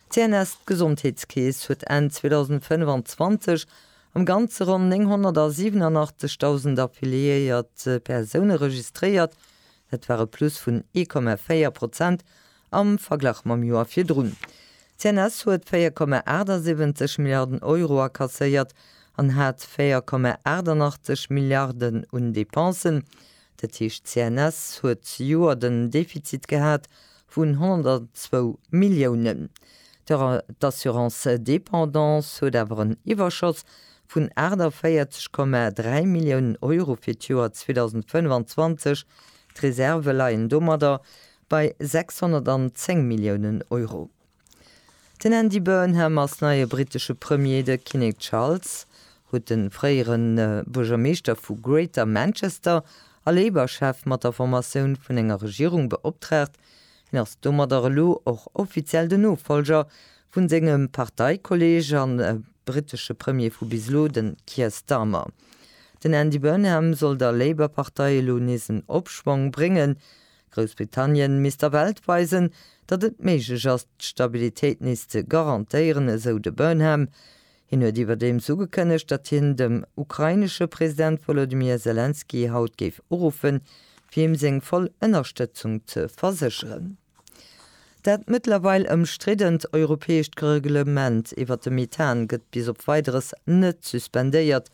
D'CNS, d'Gesondheetskeess, huet Enn 2025 am Ganze ronn 987.000 affiliéiert Persoune registréiert. Dat war e Plus vun 1,4 Prozent am Verglach mam Joer virdrun. D'CNS huet 4,78 Milliarden Euro akasséiert an hat 4,88 Milliarden un Depensen. Dat heescht d'CNS huet zejoert en Defizit gehat vun 102 Milliounen. D'Assurance dépendance huet awer en Iwwerschoss vun 48,3 Milliounen Euro fir d'Joer 2025. D'Reservë leien domadder bei 610 Milliounen Euro. Den Andy Burnham ass neie brittesche Premier. De Kinnek Charles huet de fréiere Buergermeeschter vu Greater Manchester a Labour-Chef mat der Formatioun vun enger Regierung beoptraagt. Hien ass domadder elo och offiziell den Nofollger vu sengem Parteikolleeg a brittesche Premier vu bis elo, de Keir Starmer. Den Andy Burnham soll der Labour-Partei elo nees en Opschwong bréngen. Groussbritannien misst der Welt weisen, datt et méiglech ass, d'Stabilitéit nees ze garantéieren, esou de Burnham. Hien huet iwwerdeems ugekënnegt, datt hien dem ukrainesche President Wolodymyr Selenskyj haut géif uruffen, fir him seng voll Ënnerstëtzung ze versécheren. Dat mëttlerweil ëmstriddent europäescht Reglement iwwert de Methan gëtt bis op Weideres net suspendéiert,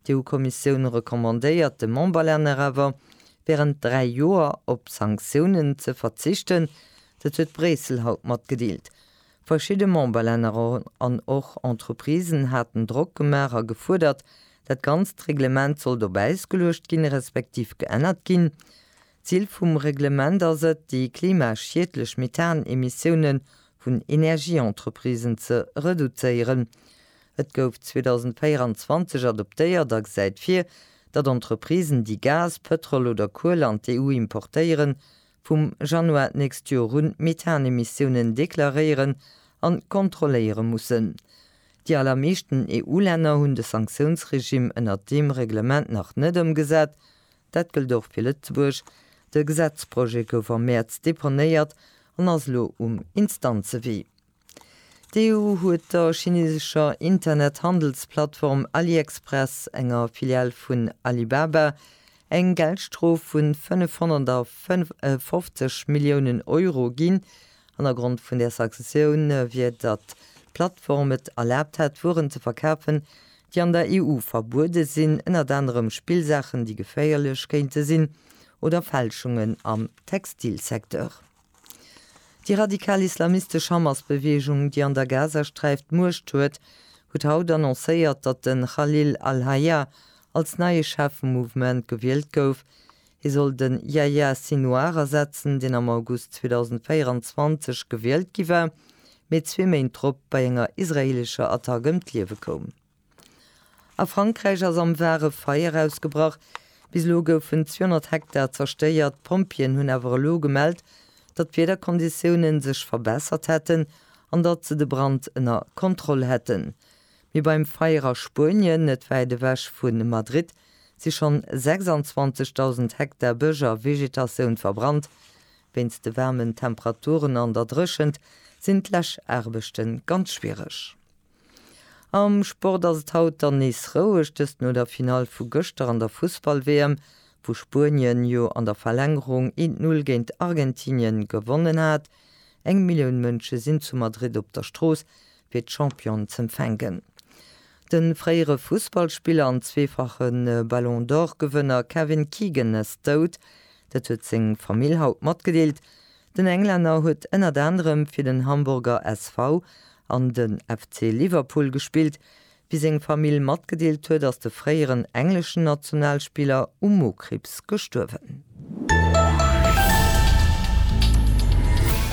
D'EU-Kommissioun recommandéiert de Memberlänner awer, wärend dräi Joer op Sanktiounen ze verzichten. Dat huet Bréissel haut matgedeelt. Verschidde Memberlänner an och Entreprisen haten Drock gemaach a gefuerdert, dat ganzt Reglement sollt op Äis geluecht ginn, respektiv geännert ginn. D'Zil vum Reglement ass et, déi klimaschiedlech Methan-Emissioune vun Energieentreprisen ze reduzéieren. Et gouf 2024 adoptéiert a gesäit vir, datt Entreprisen, déi Gas, Pëtrol oder Kuel an d'EU importéieren, vum Januar d'nächst Joer un Methan-Emissiounen deklaréieren an kontrolléiere mussen. Déi allermeeschten EU-Länner hunn de Sanktiounsregime ënnert deem Reglement nach net ëmgesat, Dat gëllt och fir Lëtzebuerg. De Gesetzprojet gouf am Mäerz deponéiert an ass elo um Instanzewee. D'EU huet der chineesescher Internethandelsplattform AliExpress, enger Filial vun Alibaba, eng Geldstrof vun 555 Milliounen Euro ginn. Hannergrond vun där Sanktioun wier, datt d'Plattform et erlaabt hätt, Wueren ze verkafen, déi an der EU verbuede sinn, ënnert anerem Spillsaachen, déi geféierlech kéinte sinn, oder Fälschungen am Textilsecteur. Déi radikal islamistesch Hamas-Beweegung, déi an der Gazasträif d'Muecht huet, huet haut annoncéiert, datt de Khalil al-Hayya als neie Chef vum Mouvement gewielt gouf, Hie soll de Yahya Sinouar ersetzen, deen am August 2024 gewielt gi war, mee zwee Méint drop bei enger israeelescher Attack ëm d'Liewe koum. A Frankräich ass am Var e Feier ausgebrach. Bis elo goufen 200 Hektar zerstéiert. D'Pompjeeën hunn awer elo gemellt, datt d'Wiederkonditioune sech verbessert hätten an datt se de Brand ënner Kontroll hätten. Mee beim Feier a Spuenien, net wäit ewech vu Madrid, si schonn 26.000 Hektar Bësch a Vegetatioun verbrannt. Wéinst de waarmen Temperaturen an der Dréchent sinn d'Läschaarbechte ganz schwiereg. Am Sport ass et haut dann nees roueg, dëst no der Finall vu gëschter an der Fussball-WM, wou Spuenien jo an der Verlängerung 1, 0 géint Argentinien gewonnen hat. Eng Millioun Mënsche sinn zu Madrid op der Strooss fir d'Championen z'empfänken. De fréiere Fussballspiller an zweefache Ballon d'Or-Gewënner Kevin Keegan ass dout. Dat huet seng Famill haut matgedeelt. Den Englänner huet ënnert anerem fir den Hamburger SV an de FC Liverpool gespillt. Wéi seng Famill matgedeelt huet, ass de fréieren engleschen Nationalspiller u Mokriibs gestuerwen.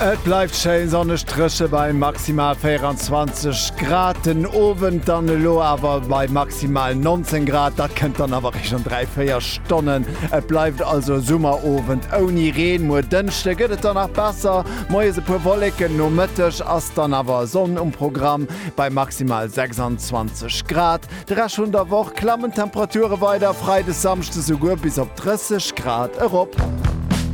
Et bleift schéin sonneg, dréche bei maximal 24 Grad den Owend, dann elo awer bei maximal 19 Grad. Dat kënnt dann awer réischt an dräi, véier Stonnen. Et bleift also e Summerowend ouni Reen. Muer Dënschde gëtt et dann nach besser, moies e puer Wolleken, Nomëtteg ass dann awer Sonn um Programm. bei maximal 26 Grad. De Rescht vun der Woch klammen d'Temperature weider, Freides, Samschdes souguer bis op 30 Grad erop.